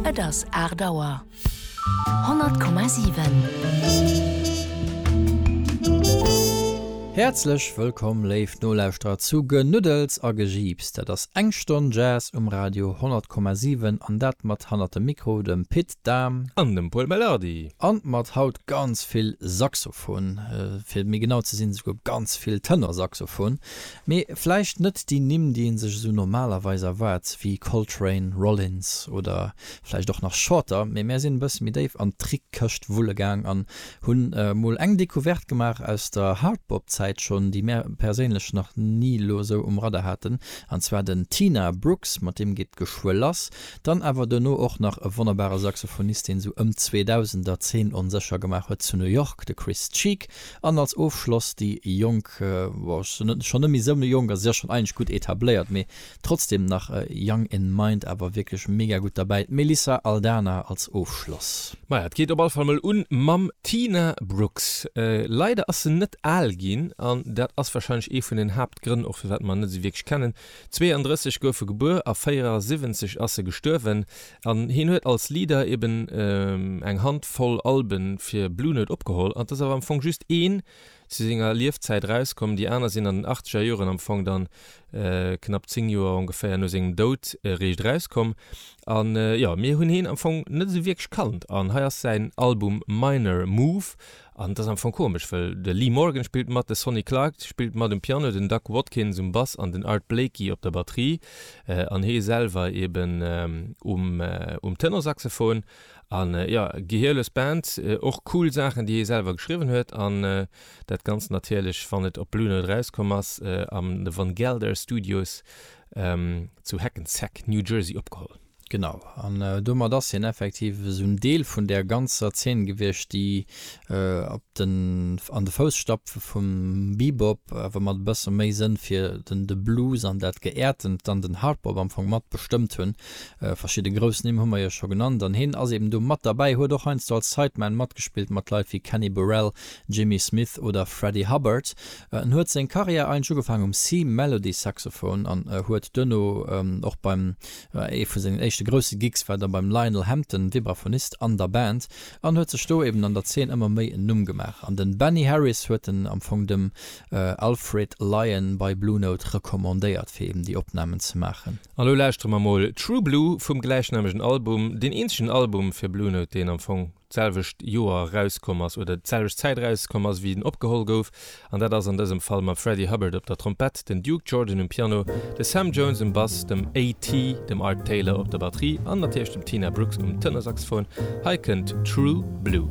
Et ass aacht Auer. 100,7. Häerzlech wëllkomm, léif Nolauschterer, zu Genuddels a Gejiips. Dat ass eng Stonn Jazz um Radio 100,7, an dat mat hannert dem Mikro dem Pit Dahm. An dem Pol Melardi. An mat haut ganz vill Saxofon, fir méi genau ze sinn esouguer ganz vill Tenor-Saxofon. Mee vläicht net déi Nimm, déi ee sech esou normalerweis erwaart, wéi Coltrane, Rollins oder vläicht och nach Shorter, mee mär sinn e bësse méi déif an d'Trick-Këscht wulle gaang an hunn emol eng Decouverte gemaach aus der Hardbop-Zäit schonn, déi mär perséinlech nach ni elo esou um Radar haten, an zwar den Tina Brooks, mat deem geet geschwë lass, dann awer duerno och nach e wonnerbare Saxophonist, deen esou ëm d'Zweedausender d'Zeen onsécher gemaach huet zu New York, de Chris Cheek. An als Ofschloss déi jonk, ech sinn schonn net méi esou jonk, also se si jo schonn eigentlech gutt etabléiert, mee trotzdem nach young in mind, awer wierklech mega gutt derbäi, d'Melissa Aldana als Ofschloss. Maja, et geet op alle Fall mol un mam Tina Brooks. Leider ass se net al ginn, an dat ass warscheinlech ee vun den Haaptgrënn och firwat mer net esou wierklech kennen. 32 gouf se gebuer a 74 ass se gestuerwen. An hien huet als Leader eben eng Hand voll Alben fir Blue Note opgeholl. An et ass awer am Fong just een zu senger Liefzäit erauskomm. Déi aner sinn an den Achteger Joren, am Fong dann knapp 10 Joer ongeféier no sengem Doud eréischt erauskomm. An jo, mir hunn hien am Fong net esou wierklech kannt. An hei ass säin Album Minor Move. An et ass am Fong komesch, wëll de Lee Morgan spillt mat, de Sonny Clark spillt mat um Piano, den Doug Watkins um Bass an den Art Blakey op der Batterie an hee selwer eben um Tenorsaxophon. An jo, gehierlös Band, och cool Saachen déi hee selwer geschriwwen huet an dat Ganzt natierlech wann et op Blue Note erauskomm ass an de Van Gelder Studios zu Hackensack, New Jersey opgeholl. Genau, an domat ass hien effektiv esou en Deel vun där ganzer Zeen gewiescht, déi op den, an de Fousstapfe vum Bebop, awer mat e bësse méi Sënn fir den, de Blues an dat Geäertent, dann den Hardbop am Fong mat bestëmmt hunn. Verschidde grouss Nimm hu mer jo scho genannt, an hien ass eben do mat derbäi, huet och heiansdo als Sideman matgespillt mat Leit wéi Kenny Burrell, Jimmy Smith oder Freddie Hubbard. En huet seng Karriär eigentlech ugefaangen um C-Melody Saxophon an huet duerno och beim Ee vu sengen éischte grousse Gigs war da beim Lionel Hampton, Vibraphonist an der Band, an huet sech do eben an der Zeen ëmmer méi en Numm gemaach. An den Benny Harris huet en am Fong dem Alfred Lion bei Blue Note recommandéiert fir eben déi Opnamen ze maachen. An lo lauschtere mer mol True Blue vum gläichnamegen Album, deen eenzegen Album fir Blue Note deen am Fong d'selwecht Joer erauskomm ass, oder d'selwecht Zäit erauskomm ass, wéi en opgeholl gouf, an dat ass an dësem Fall mam Freddie Hubbard op der Trompett, den Duke Jordan um Piano, de Sam Jones um Bass, dem AT, dem Art Taylor op der Batterie an natierlech dem Tina Brooks um Tënnersaxophon. Hei kënnt True Blue.